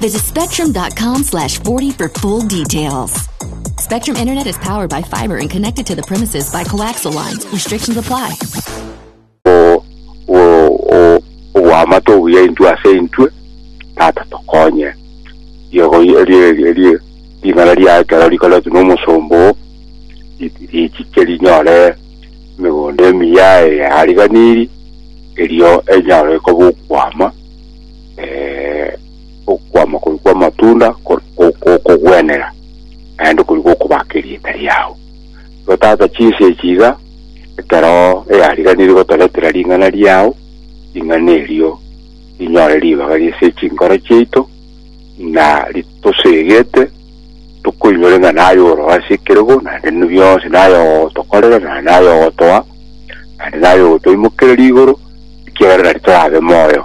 Visit spectrum.com slash 40 for full details. Spectrum Internet is powered by fiber and connected to the premises by coaxial lines. Restrictions apply. o- o- o- obwamato obuya intwe ase intwe tata tokonye riego rie- rie- rie- ring'ana ria ekero rikoretwe nomosomba oo ri- richiche rinyore emegondo emiya eyariganiri erio enyare koba okwama eh, okwama kori kw'amatunda ko- ko- ko- okogwenera naende kori gokobaka erieta riao igo tata chinsa echi iga ekero eyariganirie gotoretera ring'ana riao ring'ana erio rinyore ribaga ri'ase chinkoro chiaito ng'a ritosegete tokoinyore ng'a naye oro ase ekerego naende ne bionsi naye ogotokorera naende naye ogotoa naende naye ogotoimokereria igoro ekiagera nari torabe moyo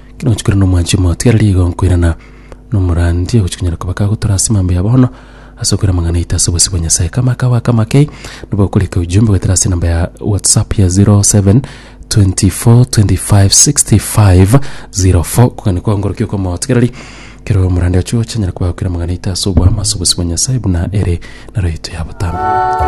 Kenochi kore nomwanchi omotiga arari igo nkoirana nomorandi ogochia konyara koba kagotora ase mambo ya bono ase okoira amang'ana aito ase obosio bwa Nyasae. Kama aka goaka amakei nabo okorika ujumbe goetera ase enamba ya WhatsApp ya 0724256504 kogani kwao ngorokia okwa omotiga arari kero omorande ochi ogochia anyare koba gakoira amang'ana aito ase obwamo ase obosio bwa Nyasae buna ere naro yaito ya botambe.